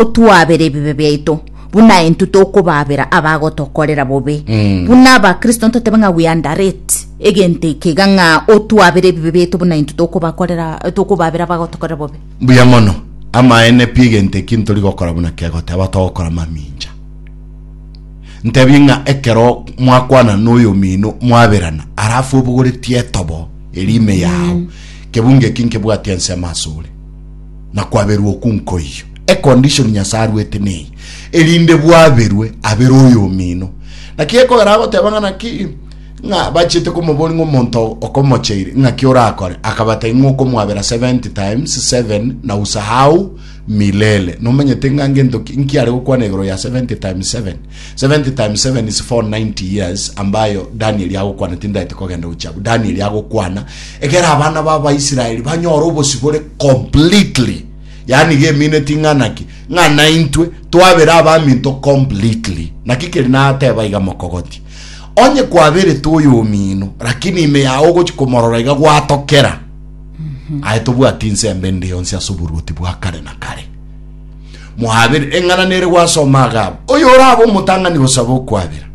otwaabere ebibe biaito, buna intwe tokobaabera abagotokorera bobe. Buna Abakristo ntotebe ng'a we underrate egento eke iga ng'a otwaabere ebibe biaito buna intwe tokobakorera tokobaabera abagotokorera bobe. Mbuya mono. Amaene pi egento eki ntori gokora buna kegoteba togokora mamincha. Ntebie ng'a ekero mwakwana na oyomino mwaberana alafu obogoretie etobo eria ime yao, kebungo eki nkebwatia ensemo asore. na kwaberwa okwo nkoiyo. E condition Nyasae aruete neye erinde bwaberwe abere oyomino. Naki gekogera agoteba ng'a naki ng'a bachiete komobori ng'a omonto okomocheire ng'aki orakore, akabatebia ng'a okomwabera 70 times 7 na usahau milele. Nomanyete ng'a ngento ki nkiare gokwana igoro ya 70 times 7? 70 times 7 is 490 years ambayo danieli agokwana tindaete kogenda gochiabu danieli agokwana egera abana b'abaisraeli banyore obosibore completely yaani gemine ting'anaki ng'ana intwe twabere abaminto completely naki keri nateba iga mokogoti onye kwaberete oyo omino lakini ime yao ogochi komorora iga gwatokera aye tobwati inse embe ndi yonsi ase oboruoti bwa kare na kare Moabere eng'ananere gwasoma agabo. Oyo orabe omotang'ani gosaba okwabera.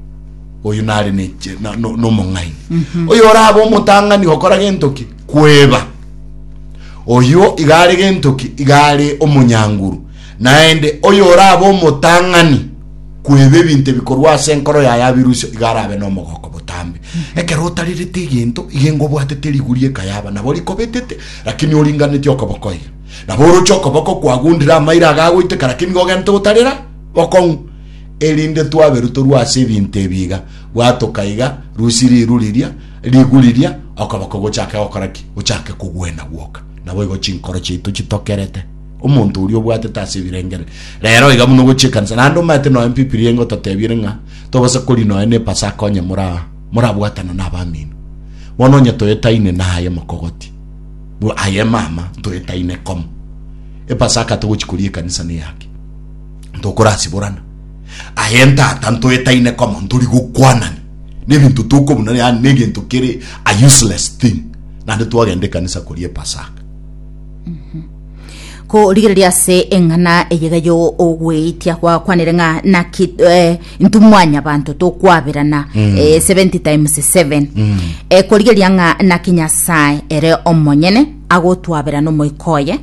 Oyo nare ne na, no, no mong'aini. Mm -hmm. Oyo orabe omotang'ani gokora gentoki kweba. Oyo igare gentoki igare omonyanguru. Naende oyo orabe omotang'ani kweba ebinto bikorwa ase enkoro yaye abirusio igare abe nomogoko botambe. Mm -hmm. Ekero otarerete egento igengo bwatete riguri ekayaba nabo rikobetete lakini oringaneti okobokoira. Nabo oroche okoboko kwagundire amairo agagoiteka, lakini nigo ogente gotarera bokong'u, erinde twaberu torue ase ebinto ebi iga, bwatoka iga, rusie riru riria, rigu riria, okoboko gochake gokora ki? Gochake kogwena gwoka. Naboigo chinkoro chiaito chitokerete omonto oria obwatete ase ebirengereri. Rero iga buna ogochia ekanisa, naende omanyete nonya Bibilia engototebirie ng'a togose kori nonya ne Epasaka onye mora morabwatana na abamino, bono onye toyetaine naye mokogoti. Bua aye mama ntoetaine komo epasaka togochi koria ekanisa neyake ntokorasiborana aye ntata ntoetaine komo ntori gokwanani nebinto tokobuna yani negento kere a useless thing nande twagenda ekanisa koria epasaka korigereria ase eng'ana eyegeyoo ogweetia gwakwanire ng'a naki eh, intwe mwanyabanto tokwaberana eh, 70 times 7 Eh, korigeria ng'a naki nyasae ere omonyene agotwaberana omoika oye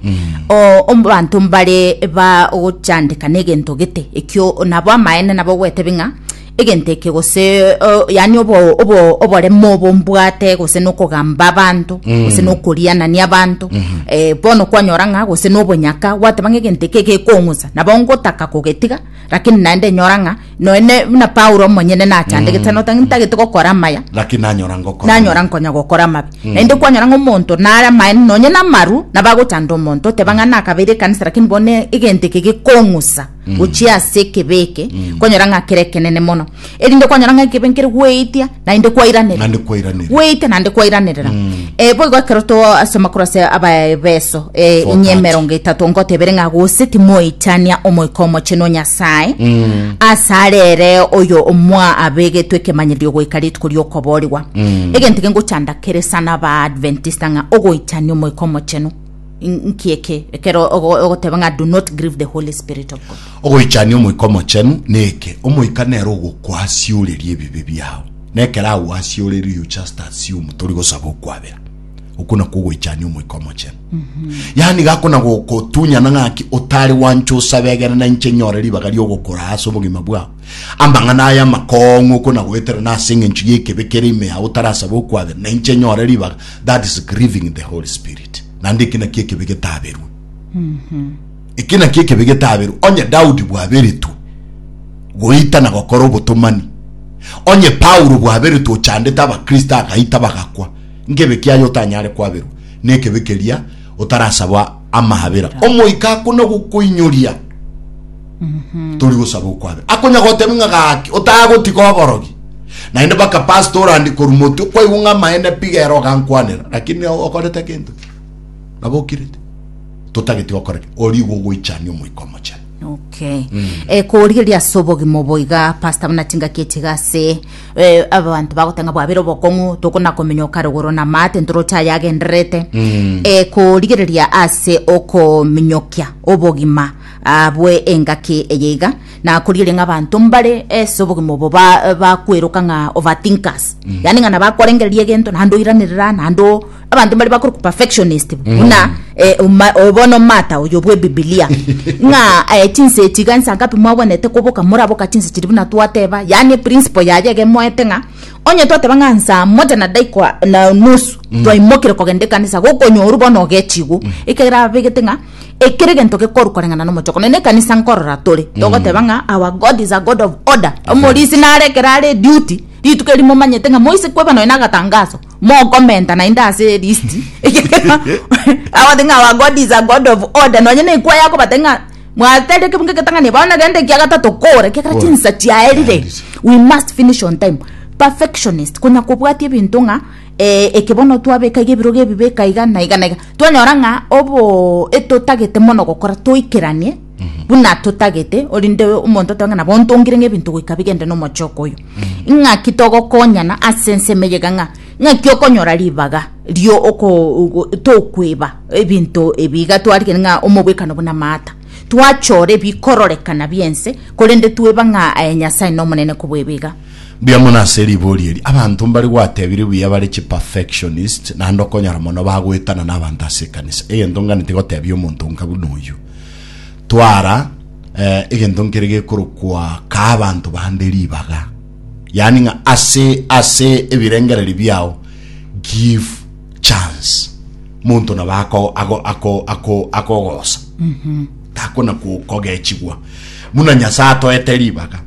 O- obanto mbare bagochandeka negento gete ekio nabo amaene nabo gwetebe ng'a egento eke gose eh, yani obo- obo- oboremo obo mbwate gose nokogamba abanto gose nokorianania abanto Eh, bono kwanyora ng'a gose nobonyaka gwateba ng'a egento eke gekong'usa nabo ngotaka kogetiga Lakini naende nyora ng'a noe ne- buna Paulo omonyene nachandegete mm. notang'e ntagete gokora amaya lakini nanyora ngokora nanyora nkonya gokora amabe naende kwanyora ng'a omonto nare amaene nonye namaru nabagochanda omonto oteba ng'a nakabeire ekanisa lakini bone egento eke gekong'usa gochia ase ekebe eke kwanyora ng'a kere ekenene mono erinde kwanyora ng'a ekebe nkere goetia Naende kwairanerera. Naende kwairanerera. Gweita naende kwairanerera. Eh, boigo ekero to ase amakoro ase abaebeso eh, Four inye thirty. emerongo etato ngotebere ng'a gose timoitania omoika omochenu o Nyasae ase arere oyo omwa abegetwe ekemanyererio goika rituko ri'okoboorigwa egento eke ngochanda kere sana abaadventista ng'a ogoitania omoika omochenu in- nkieke ekero ogo- ogoteba ng'a do not grieve the holy spirit of god Ogoichania Omoika Omochenu neke? Omoika nere ogokwasioreria ebibe biao. Nekero agwasioreire you just assume tori gosaba okwabera. Okwo nakwo ogoichania Omoika Omochenu. Yaani gako na gokotunyana ng'aki otari gwancha osabe egere na inche nyore ribaga ri'ogokora ase obogima bwao. Amang'ana aya amakong'u okwo na goetera na ase eng'encho y'ekebe kere ime yao otarasaba okwabera na inche nyore ribaga that is grieving the Holy Spirit. Naende eki nakio ekebe getaberwe. Eke nakio ekebe getaberwe onye Daudi bwaberetwe goita na gokora obotomani, onye Paulo bwaberetwe ochandete Abakristo agaita bagakwa. Nkebe ki aya otanyare kwaberwa nekebe keria otarasaba amaabera? Omoika akona gokoinyoria tori gosaba okwabera. Akonya gotebia ng'a gaki otagotiga oborogi. Naende baka pastor orandi korwa moti okwaigwa ng'a amaene pi gera ogankwanera lakini okorete gento ki? Nabokirete, totagete gokora ki? Oria igo ogoichania Omoika Omochenu. Okay. Eh, korigereria ase obogima obo iga pastor buna tingaki echi iga ase eh, abanto bagotanga bwabere obokong'u tokona komenya okare goro na mate ntoroche aya agendererete eh, korigereria ase okominyokia obogima ah, bwe engaki eye iga na korigereria ng'a abanto mbare ase obogima obo ba- bakweroka ng'a overthinkers yaani ng'a nabakorengereria egento naende oiranerera naende o- abanto mbare bakore perfectionist buna eh, oma- o- bono mata oyo bwe bibilia ng'a eh, chinsa echi iga nsa ngapi mwagwenerete koboka moraboka chinsa chiri buna twateba yaani eprinciple yaye iga emoete ng'a onye twateba ng'a nsa moja na daika na nusu twaimokire kogenda ekanisa gokonyorwa bono ogechigwa ekero abegete ng'a Ekero egento gekorwa koreng'ana nomochoko, nonya ekanisa nkorora tore, togoteba mm. ng'a our God is a God of order. Omorisi nare ekero are duty, rituko eri momanyete ng'a moise kweba nonya nagatangaso, mokomenta naende ase list. Agote ng'a our God is a God of order. Nonya na ekwa yako bate ng'a mwateria kebunga egetang'ani bono rende ekia gatato kore, ekia kare chinsa chiaerire. We must finish on time. Perfectionist, konya kobwatia ebinto ng'a eh, eke bono twabeka iga ebirogo ebi beka iga na iga na iga. twanyora ng'a obo etotagete mono gokora toikeranie buna totagete orinde omonto otoe ng'a nabo ntongire ng'a ebinto goika bigende na omochoko oyo ng'aki togokonyana ase ensemo eye iga ng'a ng'aki okonyora ribaga rio oko ogo tokweba ebinto ebi iga twarigani ng'a omobwekano buna maata twachora ebikororekana bia ense korende tweba ng'a aye nyasae nomonene kobweba iga. Mbuya mono ase ribori eri. Abanto mbare gwatebirwe buya bare chi perfectionist naende okonyora mono bagoetana na abanto ase ekanisa. Egento nganeti gotebia omonto nka buna oyio. Twara eh, egento nkere gekorokwa ka abanto bande ribaga. Yaani ng'a ase ase ebirengereri biao give chance. Monto nabo ako ako ako ako akogosa. Takona kogechigwa. Muna Nyasaye atoete ribaga.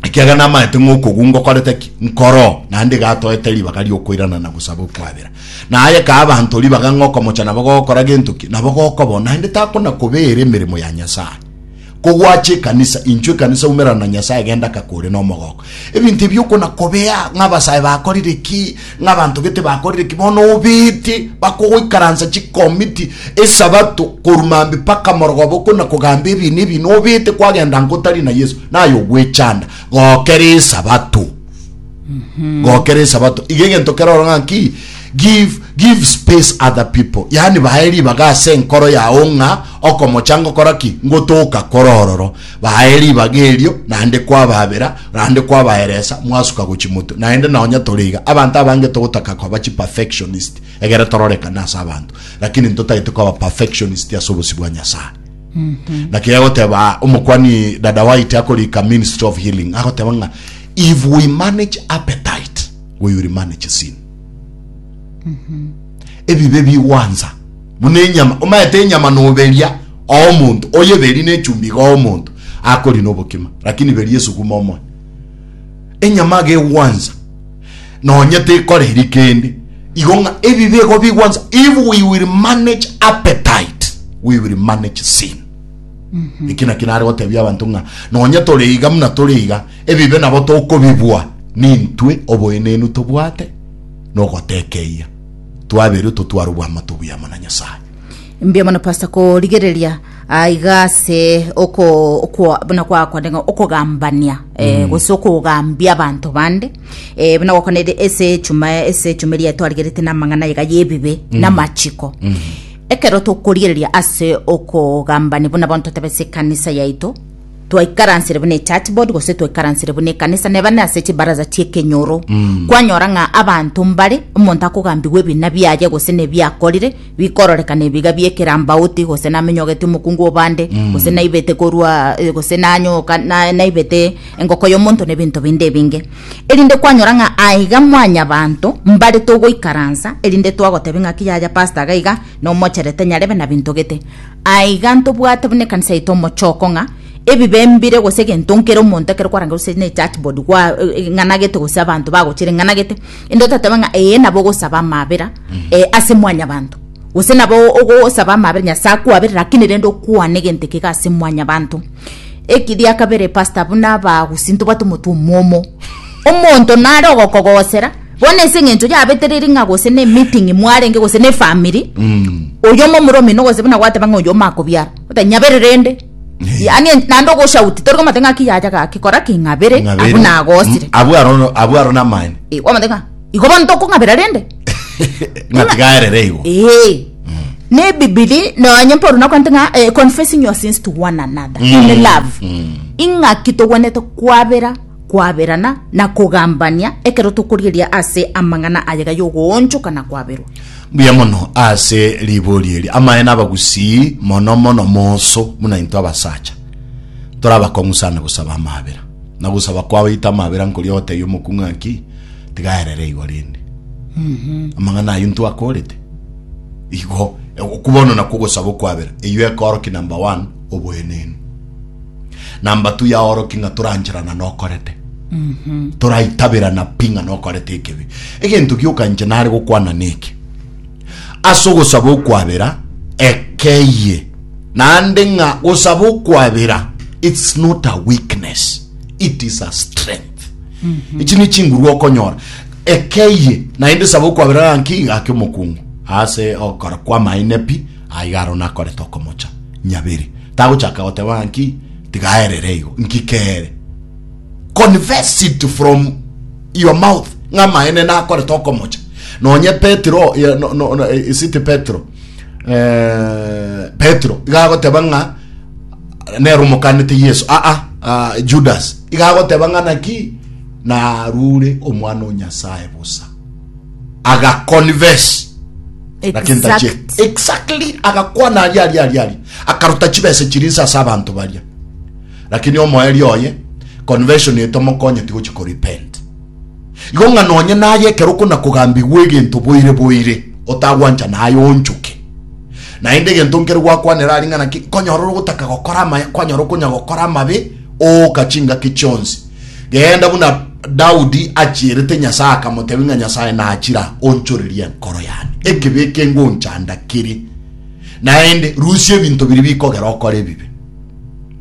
ekiagera namaete ng'a okogunga okorete ki? Nkoro, naende iga atoete ribaga ri'okoirana na gosaba okwabera. Na aye kaa abanto ribaga ng'a okomocha nabo gogokora gento ki? Nabo gokobao, naende takona kobeera emeremo ya Nyasae. Kogwache ekanisa, inchwe ekanisa umerana na Nyasae genda kaka ore nomogooko. Ebinto ebi okona kobea ng'a abasae bakorire ki? Ng'a abanto gete bakorire ki? Bono obeete bakogoikaransa chikomiti Esabato korwa mambia mpaka morogobo na kogamba ebiina ebiina, obeete kwagenda nko otari na Yeso, naye ogwechanda. Gokera Esabato. Gokera Esabato. Iga egento kere oro ng'a ki? Give, give space other people. Yaani bae ribaga ase enkoro yao ng'a okomocha ngokora ki? Ngotoka kore ororo. Baye ribaga erio, naende kwababera, naende kwabaeresa, mwasuka gochia motwe. Naende nonya tore iga, abanto abange togotaka koba chiperfectionist egere tororekane ase abanto, lakini ntotagete koba perfectionist ase obosio bwa Nyasae. Naki egoteba omokwani Dada White akorika Ministry of Healing, agoteba ng'a if we manage appetite, we will manage sin. ebibe bigwansa buna enyama omaete enyama noberia oo omonto oyeberi nechumbi iga oo omonto akori nobokima lakini beria esuguma omoe enyama aga egwansa nonye tekoreri kende igo ng'a ebibe igo bigwansa if we will manage appetite we will manage sin eki naki nare gotebia abanto ng'a nonye tore iga buna tore iga Ebibe nabo tokobibua nintwe oboenenu tobwate na ogotekeia twaberwe totware obwamato obuya amo na Nyasaye. Mbuya mono pastor korigereria aiga ase oko okwa buna gwakonde ng'a okogambania eh, gose okogambia abanto bande eh, buna gwakonede ese echuma ese echuma eria twarigerete namang'ana aiga yebibe namachiko ekero tokorigereria ase okogambani buna bono totebe ase ekanisa yaito twaikaransire buna echurch board gose twaikaransire buna ekanisa neba ne ase chibaraza chiekenyoro mm. kwanyora ng'a abanto mbare omonto akogambigwa ebina biaye gose nebiakorire bikororekana ebiga biekerambauti gose namenyogete omokungu obande mm. gose naibete korwa eh, gose nanyoka naibete engoko yomonto nebinto binde ebinge erinde kwanyora ng'a aiga mwanya banto mbare togoikaransa erinde twagotebi ng'a kiyaya pasta gaiga nomocherete nyarebe nabintogete Aiga ntobwate buna ekanisa yaito omochoko ng'a ebibe mbire gose egento nkere omonto ekero kwarangerwa gose ne church board gwa eh, ng'anagete gose abanto bagochire ng'anagete inde otateba ng'a eye nabo ogosaba amabera eh, ase mwanyabanto gose nabo ogosaba amabera nyasae akwabere lakini rende okwane egento ekiga ase mwanyabanto eki ria kabere pastor buna abagusi ntobwate omotwe omwomo omonto nare ogokogosera Bono ase engencho yabetereri ng'a gose ne meeting mwarenge gose ne family oyomo omoro omino gose buna gwateba ng'a oyomo akobiara oteba nyabere rende yaani en- naende ogoshauti tori komate ng'a ki yacha gaki kora ki ng'abere Ng'abere. abwo nagosire Mm, abwo aro- abwo aro namani Eh, kwamate ng'a igo bono tokong'abera rende ng'atigaerere igo ee ne bibiri nonye mpa oruna kwante ng'a eh, confessing your sins to one another in love ing'aki togwenete kwabera kwaberana na kogambania ekero tokorieria ase amang'ana ayega y'ogoonchoka na kwaberwa. Mbuya mono ase riborio eri. Amaene abagusii mono mono moso buna intwe abasacha torabakong'u sana gosaba amabera. Na gosaba kwao ita amabera nkoria ogotebia omokuu ng'a ki? Tiga aerere igo rende. Amang'ana ayio intwe akorete? Igo. Okwo bono nakwo ogosaba okwabera. Eyio ekorokia number one, oboenenu. na mbatu yaoroki ng'a torancherana nokorete toraitaberana pi ng'a nokorete ekebi egento gioka inche nare gokwana neke ase ogosaba okwabera ekeye naende ng'a gosaba okwabera it's not a weakness it is a strength ichi ni chinguru okonyora ekeye naende saba okwabera gaki gaki omokungu ase okora kwamaene pi Aigaro nakorete okomocha nyabere. Tagochaka goteba ng'a nki tiga aerere igo. Nki kere? Confess it from your mouth ng'a amaene nakorete okomocha. Nonye Petero, eh, no, no, no, eh, is it Petero? Eh, Petero, iga agoteba ng'a nero omokanete Yesu. Ah, ah, ah, Judas. Iga agoteba ng'a naki narure omwana o Nyasaye bosa. agaconverse naki ntachie Exact. exactly agakwana aria aria aria aria akaruta chibesa chirinsa ase abanto baria lakini omoerio oye conversion etomokonyeti gochi korepent igo ng'a nonye naye ekero okona kogambigwa egento boire boire otagwancha naye onchoke naende egento nkere gwakwanera ari ng'a naki konyora ore ogotaka gokora amaya kwanyora okonya gokora amabe ooka chingaki chionsi Genda buna Daudi achierete Nyasae akamotebia ng'a Nyasae nachira onchorerie enkoro yane, ekibe eke ngonchanda kere, naende rusia ebinto biria bikogera okore ebibe.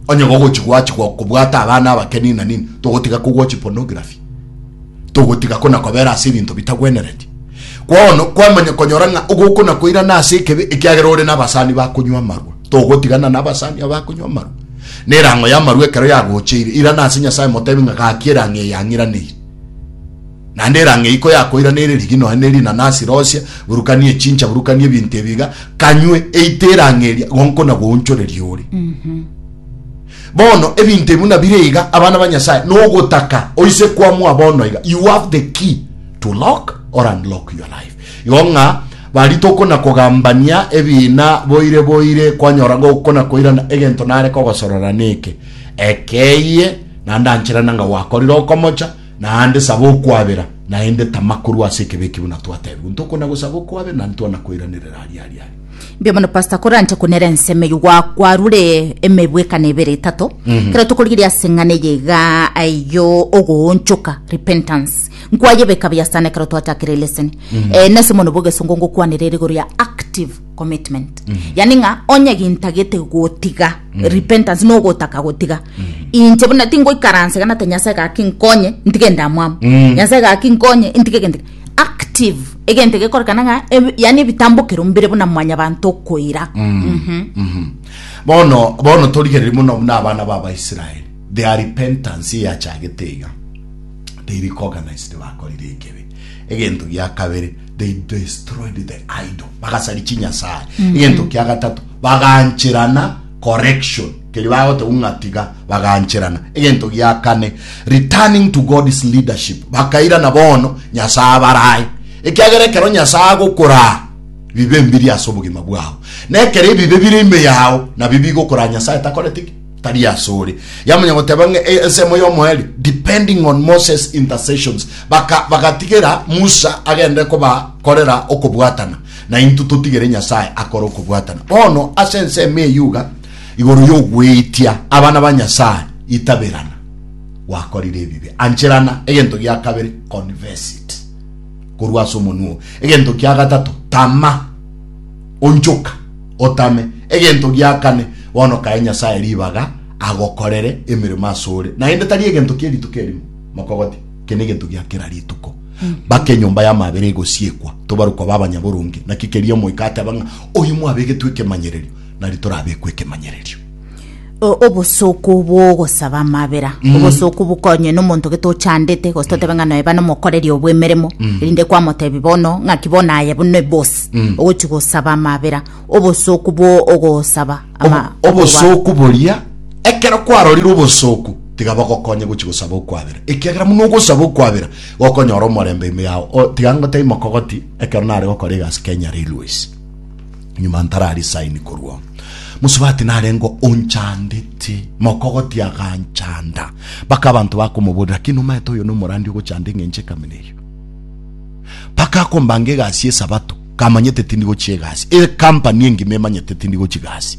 Onye gogochi gwachigwa okobwata abana abake nini na nini, togotiga kogwochi pornography, togotiga kona kobera ase ebinto bitagwenereti. Kwao no kwamanya konyora ng'a ogokona koirana ase ekebe ekiagera ore nabasani bakonywa amarwa. Togotigana nabasani abakonywa amarwa, na erang'o y'amarwa ekero yagocheire, irana ase Nyasae motebi ng'a gaki erang'o eye yang'iraneire. Naende erang'o eyio koyakoiraneire rigia nonya ne rinanasi rosia, burukania echincha, burukania ebinto ebi iga, kanywe, eite erang'o eria gonko na gounchoreria ore. Bono ebinto ebi buna bire iga, abana ba Nyasae, nogotaka oise kwamua bono iga, you have the key to lock or unlock your life. Igo ng'a Barituko na kogambania ebiina boire boire kwanyora gouko na koirana egento nare kogosorora neke, Ekeyie, naende anchera nanga gwakorire okomocha, naende saba okwabera, naende tama korwa ase ekebi eki buna twatebigwe. Ntuko na gosaba okwabera naende twana koiranerera aria aria aria. Mbuya mono pastor koranche kunera ensemo eyio gwa- kwarure emebwekano ebere etato kero tokorigeria ase eng'ana eye iga aiyo ogoonchoka repentance Nkwayebeka buya sana ekero twachakire lesson mm-hmm. eh, nase mono bogesongo ngokwanera erigoro ya active commitment mm-hmm. yani ng'a onye gintagete gotiga mm-hmm. repentance no gotaka gotiga inche buna tingoikaranse gana te nyasaye gaki nkonye ntige ndamwamu nyasaye gaki nkonye intige gende active egente gekorekana ng'a yani ebitambokero mbire buna mwanya bantu okoira bono bono torigereri muno buna abana ba abaisraeli Their repentance eyachagete iga, they recognized bakorire ekebi. Egento gia kabere, they destroyed the idol, bagasari chinyasae. Mm-hmm. Egento kia gatato, bagancherana correction keri bagoteba ng'a tiga bagancherana egento gia kane returning to god's leadership bakairana bono nyasaye abarae ekiagera ekero nyasaye agokoraa bibe mbiri ase obogima bwao na ekero ebibe bire ime yao nabio bigokoraa nyasaye takoreti ki tari asore yamanya goteba ng'a e- ensemo y'omoeri depending on moses intercessions Baka- bagatigera musa agende kobakorera okobwatana na intwe totigere nyasae akore okobwatana bono ase ensemo eyuga igoro y'ogweitia abana ba nyasae itaberana gwakorire ebibe ancherana egento gia kabere confess it korwa ase omonwa oo egento kia gatato tama Onchoka, otame. Egento gia kane, bono kae Nyasae ribaga agokorere emeremo asore, naende tari egento kie rituko erimo, mokogoti, eke negento gia kera rituko. Mpaka enyomba y'amabera egosiekwa, tobare koba abanyaboronge. Naki keria omoika ateba ng'a, Oyo mwabegetwe ekemanyererio, nari torabekwe ekemanyererio. O- obosooku bw'ogosaba amabera Mm. obosooku bukonywe nomonto gete ochandete gose totebe ng'a noe bana omokoreri obwemeremo Mm. erinde kwamotebi bono ng'aki bono aye buna ebosi Mm. ogochi gosaba amabera obosooku bwo ogosaba ama- Obo- obosooku boria ekero kwarorire obosooku tiga bogokonye gochi gosaba okwabera ekiagera buna ogosaba okwabera gokonyora omorembe ime yao O, tiga ngotebi mokogoti ekero nare gokora egasi kenya railways Nyuma ntararisaini korwa Mosubati narengwa onchandete mokogoti aganchanda baka abanto bakomoborera naki nomaete oyo nomorandi ogochanda eng'encho ekamina eyo baka akombanga egasi esabato kamanyete tindi gochia egasi e company engima emanyete tindi gochi gasi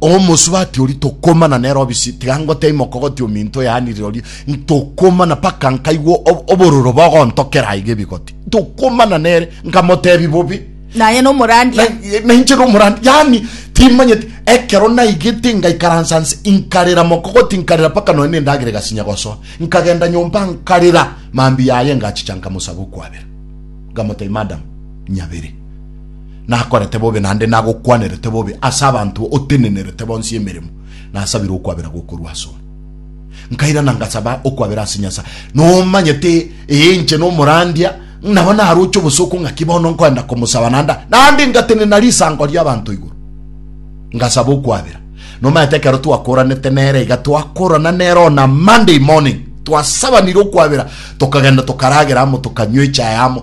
omosubati ori tokomana nero obisi tiga ngotei mokogoti ominto yanire ori ntokomana paka nkaigwa obororo bogontokera aiga ebigoti tokomana nere nkamotebi bobi naye no morandia na inche no morandi yani timanyeti ekero naigete ngaikaransa nse inkarera mokogoti inkarera paka noe nendagire gasinya gosoa nkagenda nyomba nkarera mambi yaye ngachicha nkamosabu kwabera ngamotebi madam nyabere nakorete bobe naende nagokwanerete bobe ase abanto otenenerete bonsi emeremo, nasabire okwabera gokorwa asore. Nkairana ngasaba okwabera ase Nyasae. Nomanyete, ee, inche nomorandia, nabo naroche obosooku ng'aki bono nkoenda komosaba naende, naende ngatenena risango ri'abanto igoro. Ngasaba okwabera. Nomanyete ekero twakoranete nere iga, twakorana nere on a Monday morning, twasabanire okwabera, tokagenda tokaragera amo, tokanywa echae amo,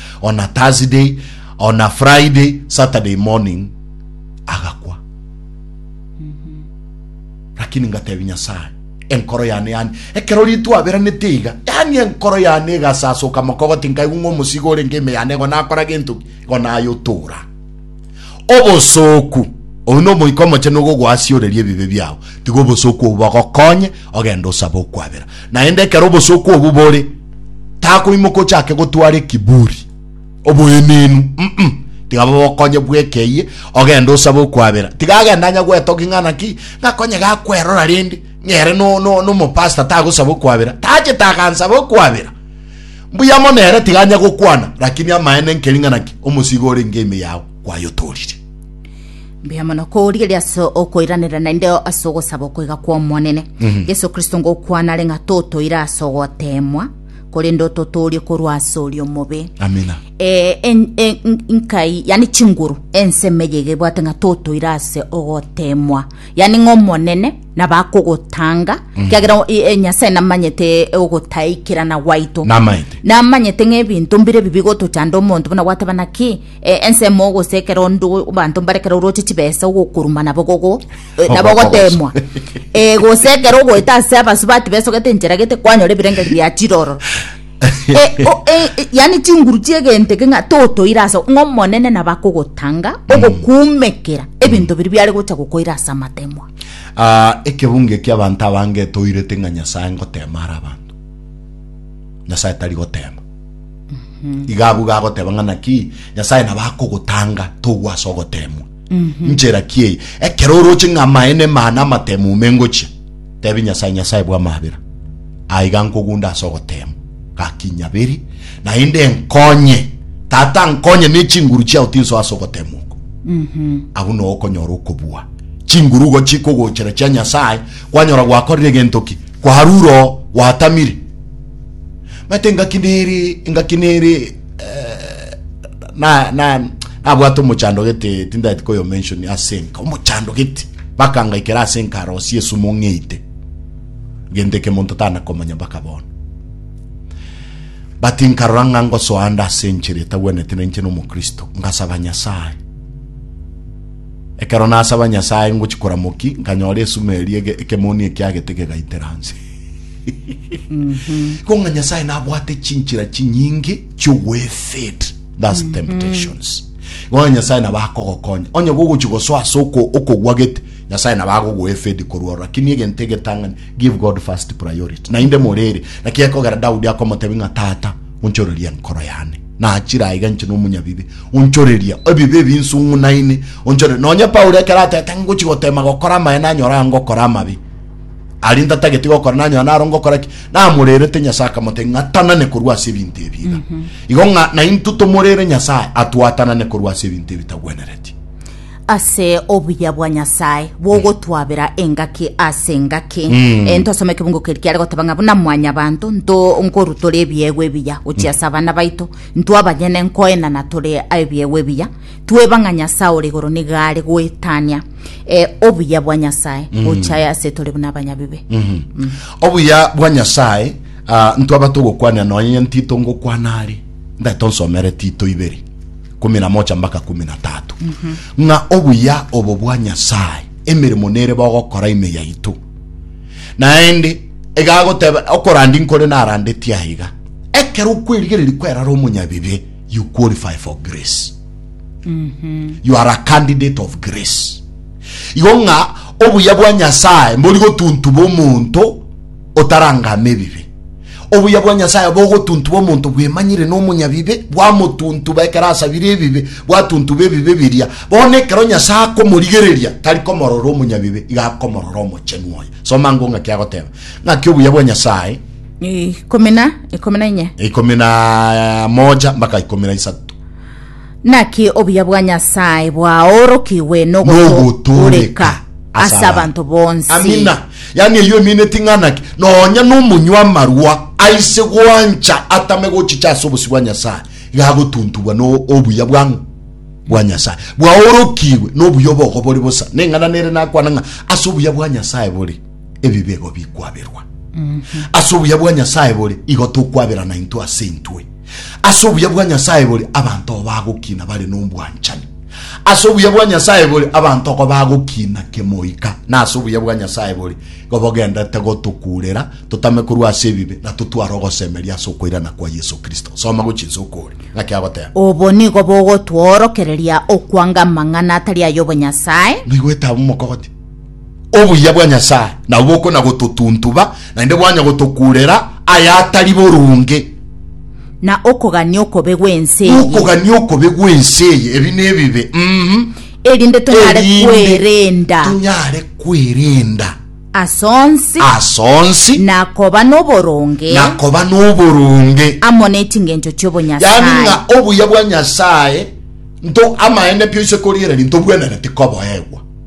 on a Thursday, on a Friday, Saturday morning agakwa. Lakini ngatebi Nyasaye, enkoro yane yani, ekero ritu aberanete iga, yani enkoro yane igasasoka mokogoti nkaigwa ng'omusigo orenge ime yane igo nakora gento ki, igo nayotora. Obosooku. Oyio n'Omoika Omochenu ogogoasioreria ebibe biao. Tiga obosooku obwo bogokonye ogende osabe okwabera. Naende ekero obosooku obwo bore, takoimoka ochake gotwara ekiburi, oboenenu, mm, tiga bogokonye bweka eye ogende osabe okwabera. Tiga agende anya gwetogia ng'a naki, ng'a konye gakwerora rende, ng'a ere no, no, nomopastor tagosaba okwabera, tachete agansabe okwabera. Mbuya mono ere tiga anya gokwana, rakini amaene nkering'ana ki omosiiga ore ng'eime yao kwayotoorire? Mbuya mono korigereria ase okoiranera naende ase ogosaba okoiga kw'Omonene. Yeso Kristo ngokwana are ng'a totoire ase ogoteemwa, korende ototoorie korwa ase oria omobe. Amina. Eh, en- en- n- nkai yani chinguru ensemo eye iga ebwate ng'a totoire ase ogoteemwa yani ng'a omonene na bakogotanga kiagera o- e- e- nyasae namanyete ogotaikerana gwaito Namaete. namanyete ng'ebinto mbire ebi bigotochanda omonto buna gwateba naki eh, ensemo gose ekero ndo abanto mbare ekero oroche chibesa ogokuruma nabo gogo eh, nabo gotemwa Eh, gose ekero ogoeta ase abasubati besogete enchera gete kwanyora ebirengeri bia chiroro Eh, o- eh, eh, yani chinguru chiegento eke ng'a totoire ase ng'a omonene nabakogotanga ogokumekera ebinto biri biare gocha gokoira ase amatemwa Aa, ekebungo ekia abanto abange etoirete ng'a Nyasae ngoteema are abanto. Nyasae tari goteema. Iga abwo iga agoteba ng'a naki Nyasae nabo akogotanga togwa ase ogoteemwa. Nchera ki eye? Ekero oroche ng'a amaene maane amatemo ume ngochia, tebi Nyasae, Nyasae bw'amabera, aa iga nkogunda ase ogoteemwa. Gaki nyabere, naende nkonye, Tata, nkonye ne chinguru chiao tinsoa ase ogoteemwa oko. Agwo nao okonyora okobua chinguru igo chikogochera chia Nyasae, kwanyora gwakorire egento ki? Kwarure oo, gwatamire. Maete engaki nere, engaki nere, eh, na, na, nabwate omochando gete, tindaeti koyomensioni, ase enka, omochando gete, bakangaikera ase enka arosie esumo ng'eite. gento eke monto tanakomanya mpaka bono. But nkarora ng'a ngosoa ande ase enchera etagwenete na inche nomokristo ngasaba Nyasae. Ekero nasaba Nyasae ngochi koramoki nkanyora esuma eria ege- ekemoni ekiagete gegaitera nse. Konga Nyasae nabwate chinchira chinyinge chiogwefit thus temptations. Konga Nyasae nabakogokonya. Onye gogochi gosoa ase oko- okogwa gete Nyasae nabo agogoa efedi korwa ororo, lakini egento egetang'ani, give God first priority. Naende morere, naki ekogera Daudi akomotebia ng'a, Tata, onchorerie enkoro yane. Nachire aiga inche nomonyabibe, onchorerie ebibe ebinsu ng'unaine, onchorerie. Nonye Paulo ekero atete ngochi gotema gokora amaene anyore aa ngokora amabe, aria ntatageti gokora nanyora naro ngokora ki? Namorerete Nyasae akamotebia ng'a atanane korwa ase ebinto ebi iga. Igo ng'a naintwe tomorere Nyasae atwatanane korwa ase ebinto ebitagwenereti. ase obuya bwa Nyasae bw'ogotwabera engaki ase engaki. Eh, ntosome ekebungo keri kiare goteba ng'a buna mwanyabanto nto nkorutora ebiegwa ebiya gochia ase abana baito ntwe abanyene nkoenana tore ebiegwa ebiya tweba ng'a Nyasae ore igoro nigo are goetania eh, obuya bwa Nyasae gochia ase tore buna abanyabibe. obuya bwa nyasaye ah, ntwaba togokwanera nonye tito ngokwana are ndare tonsomere tito ibere kumi na mocha mbaka kumi na tatu ng'a obuya obo bwa Nyasae emeremo nere bogokora ime yaito. Naende egagoteba okorandi nkore narandetie aiga, ekero okwerigereria kwerara omonyabibe you qualify for grace. You are a candidate of grace. Igo ng'a obuya bwa Nyasae mbori gotuntuba omonto otarangama ebibe. Obuya bwa Nyasae bogotuntuba omonto bwemanyire nomonyabibe, bwamotuntuba ekero asabire ebibe, bwatuntuba ebibe biria. Bono ekero Nyasae akomorigereria, tari komorora omonyabibe, iga akomorora omochenu oye. Soma ango ng'aki agoteba. Ng'aki obuya bwa Nyasae. Ikomi na ikomi na inye. Ikomi na moja mpaka ikomi na isato. Naki obuya bwa Nyasae bwaorokigwe nogotooreka ase abanto bonsi. Amina. Yaani eyio emine ting'ana ki? Nonya nomonywa amarwa aise gwancha atame gochicha ase obosio bwa Nyasae, iga agotuntugwa no obuya bwang'o? Bwa Nyasae. Bwaorokigwe nobuya obogo bore bosa. Neng'ana nere nakwana ng'a ase obuya bwa Nyasae bore. ebibe igo bikwaberwa. Ase obuya bwa Nyasae bore, igo tokwaberana intwe ase intwe. Ase obuya bwa Nyasae bore, abanto igo bagokina bare nobwanchani. Ase obuya bwa Nyasae bore, abanto igo bagokina kemoika, na ase obuya bwa Nyasae bore, igo bogendete gotokurera totame korwa ase ebibe na totware ogosemeria ase okoirana kwa Yeso Kristo. Soma gochia inse okore ng'aki agoteba. Obo nigo bogotworokereria okwanga amang'ana atari ay'obonyasae. Naigwete abamokogoti. obuya bwa Nyasae nabo bokonya gototuntuba, naende bwanya gotokurera aya atari boronge. Na okogania okobe gw'ense eye. Okogania okobe gw'ense eye, ebi nebibe, mm, erinde tonyare erinde kwerenda tonyare kwerenda ase onsi ase onsi na koba n'oboronge na koba n'oboronge. amo n'echingencho Yaani chi'obonyasae. ng'a obuya bwa Nyasae nto amaene pio ise korigereria ntobwenereti koboegwa.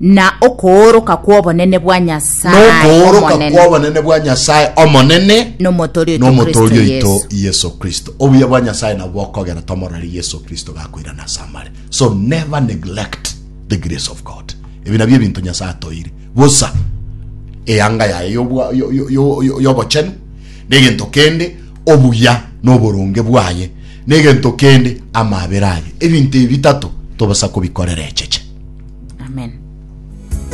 na okooroka kw'obonene bwa Nyasae Nokooroka Omonene, kw'obonene bwa Nyasae Omonene n'Omotori oito n'Omotori Kristo oito Yesu. Yeso Kristo. Obuya bwa Nyasae nabwo bokogera tomorore Yeso Kristo gakoirana ase amare. So never neglect the grace of God. Ebi nabio ebinto Nyasae atoeire. Bosa eyanga yaye y'obwa- yo- yo- yo- yo- y'obochenu, na egento kende, obuya na oboronge bwaye Negento kende amaabera aye, ebinto ebi bitato tobasa kobikorera echeche. Amen.